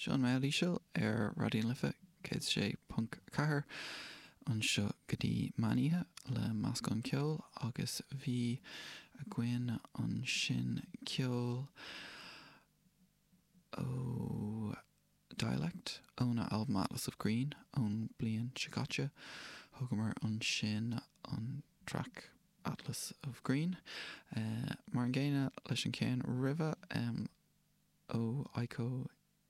Seo an rogha íseal ar Raidió na Life 106.4 anseo go dtí meán oíche le meascán ceoil agus bhí againn ansin ceol ó, Dialect, óna albam Atlas of Green ón bliain seo caite. Thógamar ansin an traic Atlas of Green, mar an gcéanna leis an cheann roimhe, ó Eiko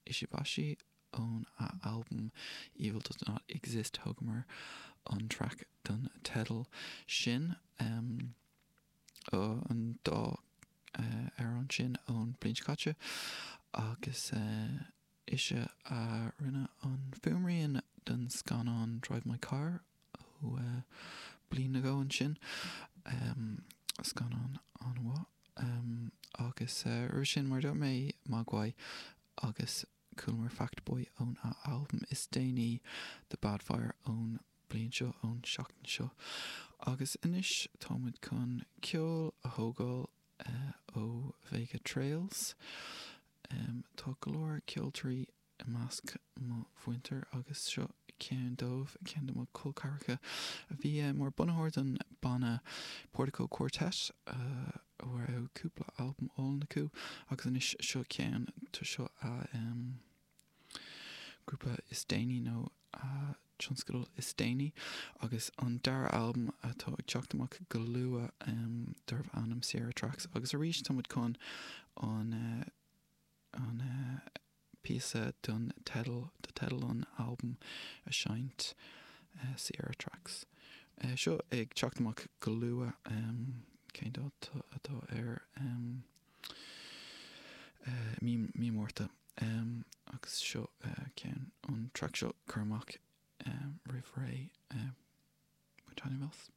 Ishibashi ón a albam Evil Does Not Exist, thógamar an traic don teideal sin. an dá amhrán sin ón bliain seo caite agus ise a rinne an fuaimrian don scannán Drive My Car ó bliain nó dhó ansin, scannán an-mhaith. Agus roimhe sin, mar a dúirt mé, Mogwai agus Chualamar Fact Boy ón a albam is déanaí The Bad Fire ón bliain seo, ón tseachtain seo, agus anois táimid chun ceol a thógáil ó Vega Trails. Tá go leor ceoltoirí i measc mo mhuintir agus seo ceann dóibh, ceann de mo col ceathracha a bhí mar bunaitheoir don banna Portico Quartet, a raibh cúpla albam álainn acu agus anois seo ceann, tá seo a ghrúpa is déanaí nó a tionscadal is déanaí agus an dara albam atá ag teacht amach go luath darbh ainm Sierra Tracks agus arís tá muid chun an an píosa don teideal, do teideal an albaim a seinnt, Sierra Tracks. seo ag teacht amach go luath. Cén dáta atá air? mí, mí Márta. Agus seo ceann, an track seo curtha amach roimh ré. An t-ainm Els.